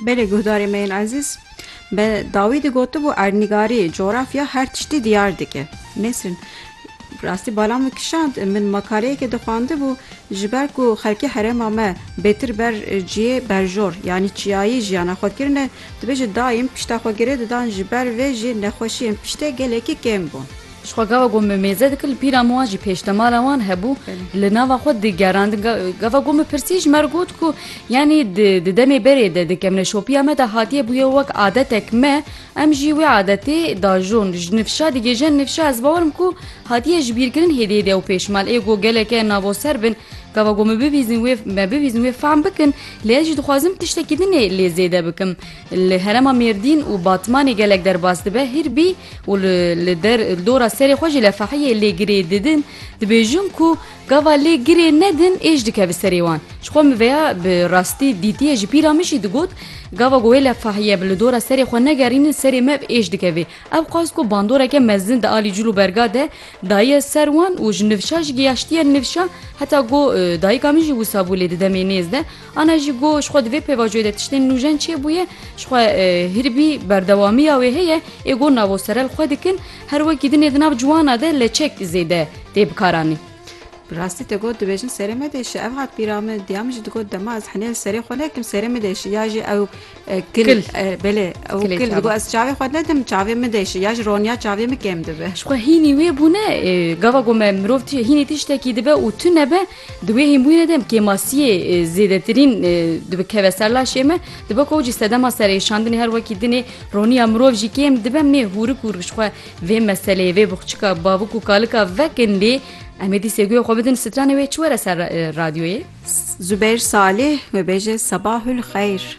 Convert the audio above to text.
Belê guhdarê me yên ezîz bi dawî digotibo erdnîgarî, coğrafya her tiştî diyar dike. Nesrin rastî bala min kişand, min makaleyekê dixwandibû ji ber ku xelkê herêma me bêtir ber ciyê berjor yanî çiyayî jiyana xwe kirine, dibêje dayîm pişta xwe girê didan ji ber vê jî nexweşiyên piştê gelekî kêm bûn. Ji xwe gava ku min mêze dikir li pîran wan jî pêşdemala wan hebû li nava xwe digerandin gava ku min pirsî ji me re got ku yanî di demê berê de di kemneşopiya me de hatiye bûye wek adetek me em jî wê adetê dajon ji nifşa digêjin nifşa ez bawerim ku hatiye ji bîrkirin hêdê de û pêşmal ê ku geleke navoser bin gava ku min bibîzin wê me bibîzin wê fehm bikin lê ez jî dixwazim tiştekî din ê lê zêde bikim. Li herêma Mêrdîn û Batmanê gelek derbas dibe hîr bî û li dora serê xwe jî lefehiyê lê girê didin. Dibêjin ku gava lê girê nedin êş dike bi serê wan. Ji xwe min veya bi rastî dîtiye ji pîra min jî digot gava ku wê lefahiye bi li dora serê xwe negerînin serê me bi êş dikevê. Ew xwest ku bandoreke mezin di alî cil û berga de daye ser wan û ji nifşa jî giyaştiye nifşa heta ku dayika min jî wisa bû lê di demê nêz de Ana jî got, ji xwe di vê pêvajoyê de tiştên nûjen çêbûye, ji xwe hiribî berdewamiya wê heye, ê got navo serel xwe dikin, her wekî dinê di nav ciwana de leçek zêde tê bikaranî. Bi rastî te got dibêjin serê me de şi, ev hat bîra min, diya min jî digot dema ez henê li serê xwe nekim serê min de şi, ya jî ew Kil belê ew kil digo ez çavê xwe nedim çavê min de ya ji roniya çavê min kêm dibe. Ji xwe hînî wê bûne gava ku me mirov hînî tiştekî dibe û tu nebe di wê hînbûnê de kêmasiyê zêdetirîn dibikeve ser laşê me dibe ku cî sedema serêşandinê her wekî dinê roniya mirov jî kêm dibe mê hûrik û ji xwe vê meseleyê vê bixçika bavik û kalika vekin lê em ê dîsê guya xwe bidin stranê wê çi were ser radyoyê Zubeyr Salih wê bêje sebahul xeyr.